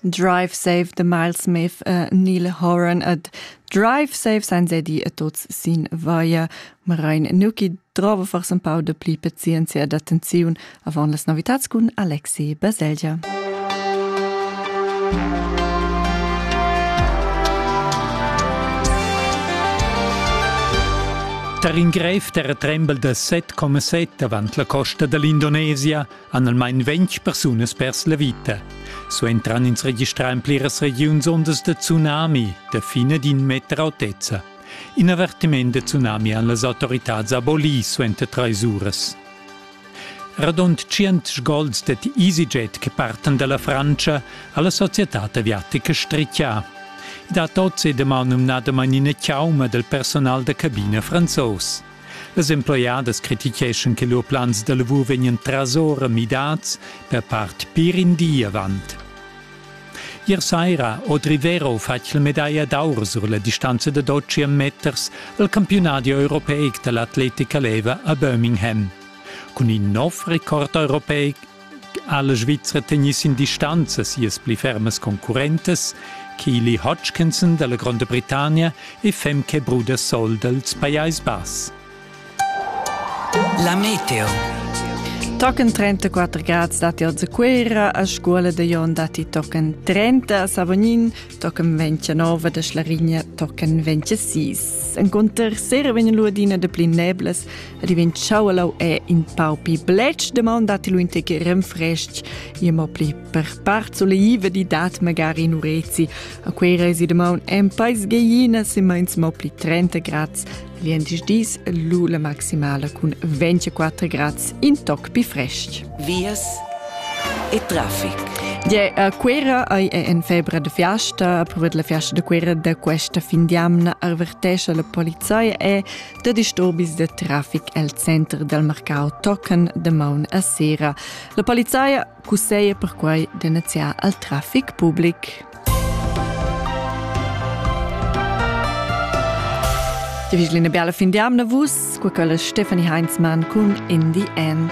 Drive Save the Miles Smith uh, Neil Horan ad Drive Save sein sehr die tots sin via Marein Nuki trova fars un pau de pli pazienzia d'attenziun avant las novitats cun Alexei Baselgia. Tar in grev terra trembel da 7,7 avant la costa da l'Indonesia han almain ventg persunas pers la vita. So entran ins registrà en pliras regiuns ondas da tsunami da fine d'in meter autezza. In avertiment da tsunami han las autoritads abolì suenter trais uras. Radund 100 gols dad EasyJet che partan dalla Francia ha la societad aviatica stritgà. I dat oz è damaun numnadamain ina chauma del personal da cabina franzos. Las emploiadas criticheschan che lur plans da lavur vegnan trasora midads per part pir in di avant. Ier saira Audrey Vero fatg la medaglia d'aur sur la distanza da 200 meters al campiunadi europeic da l'atletica leva a Birmingham. Cun in nov record europeic ha la Svizra tegnì sin distanza sias pli fermas concurrentas, Keely Hodgkinson dalla Gronda Britannia e Femke Brudersol dals Pajais Bass. La meteo. Tochen 34 grad stati oz a Cuera, a scola de Jon dati tochen 30, Savognin tochen 29 de Schlarinia tochen 26. Enconter sera vegn l'uadina de pli neblas ed i vegn chaualau è in pau pli bletsch, demanda ti lu in tec renfrestg, e mo pli per part soleiva di dat magari in urezi. A quei resi de maun en pais geiina se meins mo pli 30 grads, Viendisch dis lu la maximala cun 24 grads in toc pi frestg. Vias e traffic. Die, a Quera ei è en febra de fiasta, a provet la fiasta de Quera de questa fin di amna arvertescia la polizia e Da disturbis da trafic el center dal marcau tocan damaun a sera. La polizia cusseia perquai de neziar al trafic public. Die vigeli eine bella fin di amna vus, qua quella Stefanie Heinzmann con In the End.